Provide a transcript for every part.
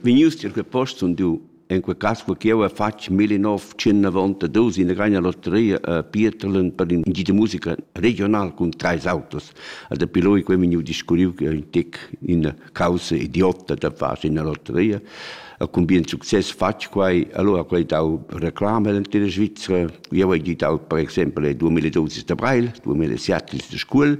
Vegnius tier quei post sun du, en quei cass co ch'jeu hai fatg 1992 in grania lotteria a Pieterlen per in gi de musica regional cun treis autos. E dapi loi quei vegniu discurriu che ein tec ina caussa idiotta da far ina lotteria. E cun bien success fatg quei, allora quei dau reclama nella Svizzera. Jeu hai gidau per exempel 2012 da Breil, 2007 de Scuol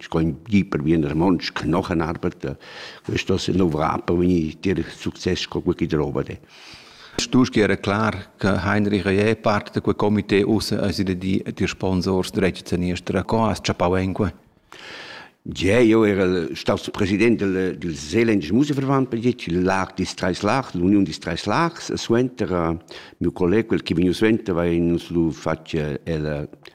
ich kann jemand wie ein Mensch Knochen arbeiten. Das ist noch Rappen, wenn ich dir Success wirklich drauf habe. Du wäre klar, dass Heinrich Eppart, der Komitee raus, also die, die Sponsors, der Rezeptionist, der Coas, Ciapawenque? Ja, io era stato presidente del Seeländischen Musikverband per dit, il LAG di Streislach, l'Union di Streislachs, e suenter mio collega, quel che veniva suenter, va in uns lu faccia il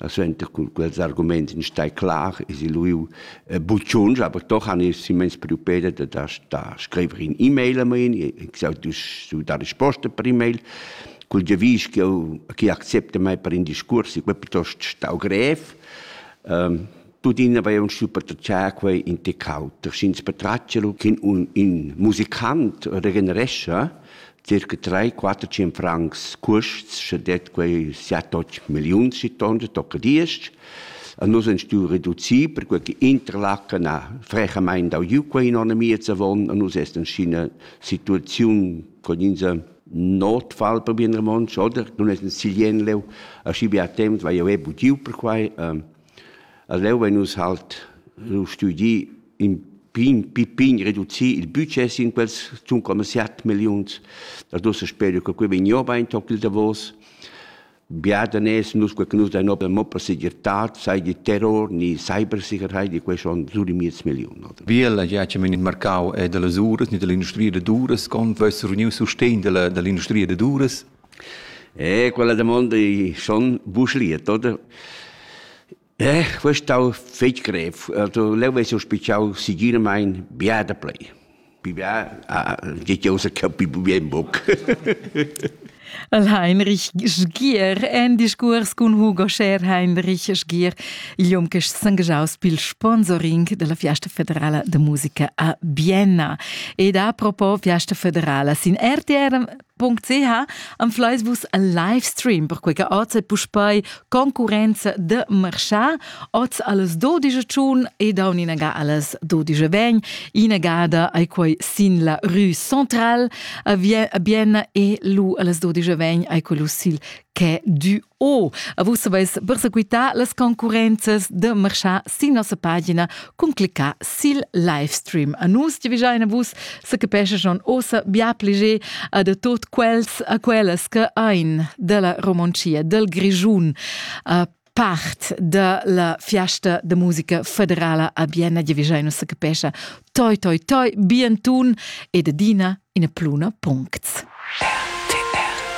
E suenter cun quels arguments in stai clar es il lieu buciuns, aber doch han ich simmens preoccupate da da da scriver in e-mail a me, ich sage du da risposta per e-mail cul giavisch ch'eu chi accepta mei per in discurs, ich be piuttost stau grev. Tuttina avevan schiu patratgà quei in tec auter, sch'ins patratgia lu che un, in musicant regenerescha circa 3-4 100 francs custs, sche det quei 7-8 milliuns si tonda, tocca diesch. A nus han stuiu reducir, perquei che Interlaken ha frechamain dau giu quei in onn miez avon, a nus est inschina situaziun con insa notfall per bien romontsch, oder? Nun es in silien leu, aschi bia temps vai jeu bugiu per quai. Ähm, A leu vein nus halt lu studi in pign, pign reducir il budget sin quels zun coma siat milliuns. Dad ussa speru che quei vegn jeu bein toc il davos. Bia daners nus quei che nus dein ober mo per segirtad, sei di terror ni cybersicherheit, di quei schon sur di miez milliun. Oder? Vielä ja che men in marcau è dalla uras ni dall'industria da duras, con vess reuniu sustegn dalla, dall'industria da duras? Eh, quella damonda i schon busliet, oder? Eh, quest stau fetg grev. Also, leu vess jeu spitschau segiramain bia da play. Pi bia, ah, geht ja außer capi bien boc. Heinrich Sgier, en discurs cun Hugo Scher Heinrich Sgier, igl hom che s'angagiaus pil sponsoring della Fiesta Federala de Musica a Bienna. Ed a propo Fiesta Federala sin RTR .ch anfleis vus al livestream per quei che oz è puspei concurenza de marchà oz alles 12 giun e da uninaga alles 12 vegn inagada ai quei sin la rue centrale bien e lu alles 12 vegn ai quello sil quai du Oh, a vus avais persequità las concurrenzas da marchar sin nossa pagina cun cliccar sil livestream. A nus giavigiain a vus se capescha schon ossa bia pliger a de tot quels a quellas che ein della Romoncia, del Grigiun, a part da la fiasta de musica federala a Bienna giavigiain se capescha toi toi toi bien tun e de dina in a pluna puncts. RTR